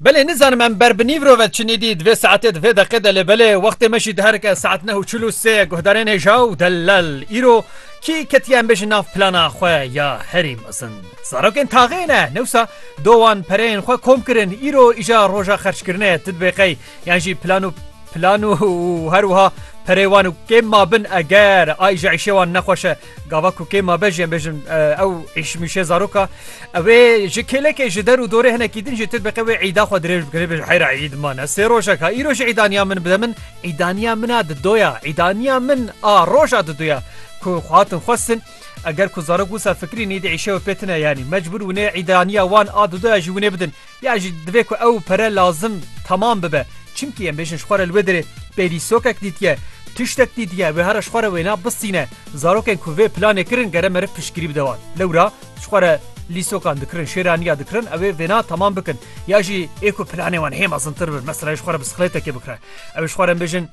Belê nizanim em ber bi nîvro ve çinî dî divê saetê divê deqê delê belê wextê me jî diherike saet neh û çil û sê guhdarên hêja û delal îro kî ketiye em bêjin nav plana xwe ya herî mezin zarokên taxê ne newsa do wan pereyên xwe kom kirin îro îja roja xerçkirinê ti dibê qey yan jî plan û plan û her wiha perê wan û kêm ma bin eger ayîja îşê wan nexweşe Gava ku kê ma bejî em bêjin ew îşmîşê zaroka ew ê ji kêlekê ji der û dorê hinekî din jî tu diqe wê îda xwe dirêj bikirê bêjin heyra îd mane sê rojek ha îro jî îdaniya min bide min îdaniya min a di doya îdaniya min a roja di doya ku xwe hatin xwestin eger ku zarok wisa fikirî nîdî îşewe pê tine yanî mecbûr wînê îdaniya wan a di doya jî wînê bidin Ya jî divê ku ew pere lazim temam bibe. Çimkî em bêjin ji xwe re li wê derê pêdî sokek dîtiye, tiştek dîtiye, wê here ji xwe re wêna bisîne. Zarokên ku vê planê kirin gere meriv piştgirî bide wan. Lewra ji xwe re lîsokan dikirin, şêraniya dikirin ew ê vêna temam bikin. Ya jî ê ku planê wan hê mezintir bin, mesela ê ji xwe re bisiklêtekê bikire. Ew ê ji xwe re em bêjin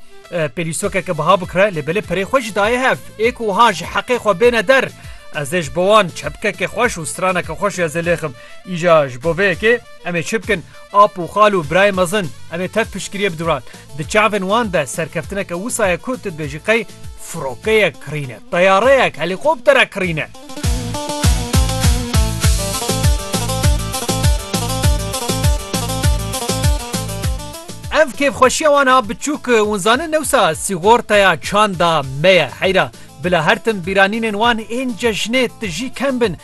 pêdî sokeke biha bikire lê belê perê xwe jî daye hev. Ê ku wiha ji heqê xwe bêne der, ez ê ji bo wan çepkeke xweş û straneke xweş ya zêlêxim. Îja ji bo vê yekê em ê çi bikin? Ap û xal û birayên mezin, em ê tev piştgiriyê biduran. Di çavên wan de serkeftineke wisa ye ku tu dibêjî qey firokeyek kirîne, teyareyek, helîkopterek kirîne. Ev kêfxweşiya wan a biçûk hûn zanin newsa sîgorteya çanda me ye. Heyra bila her tim bîranînên wan ên cejnê tijî kem bin.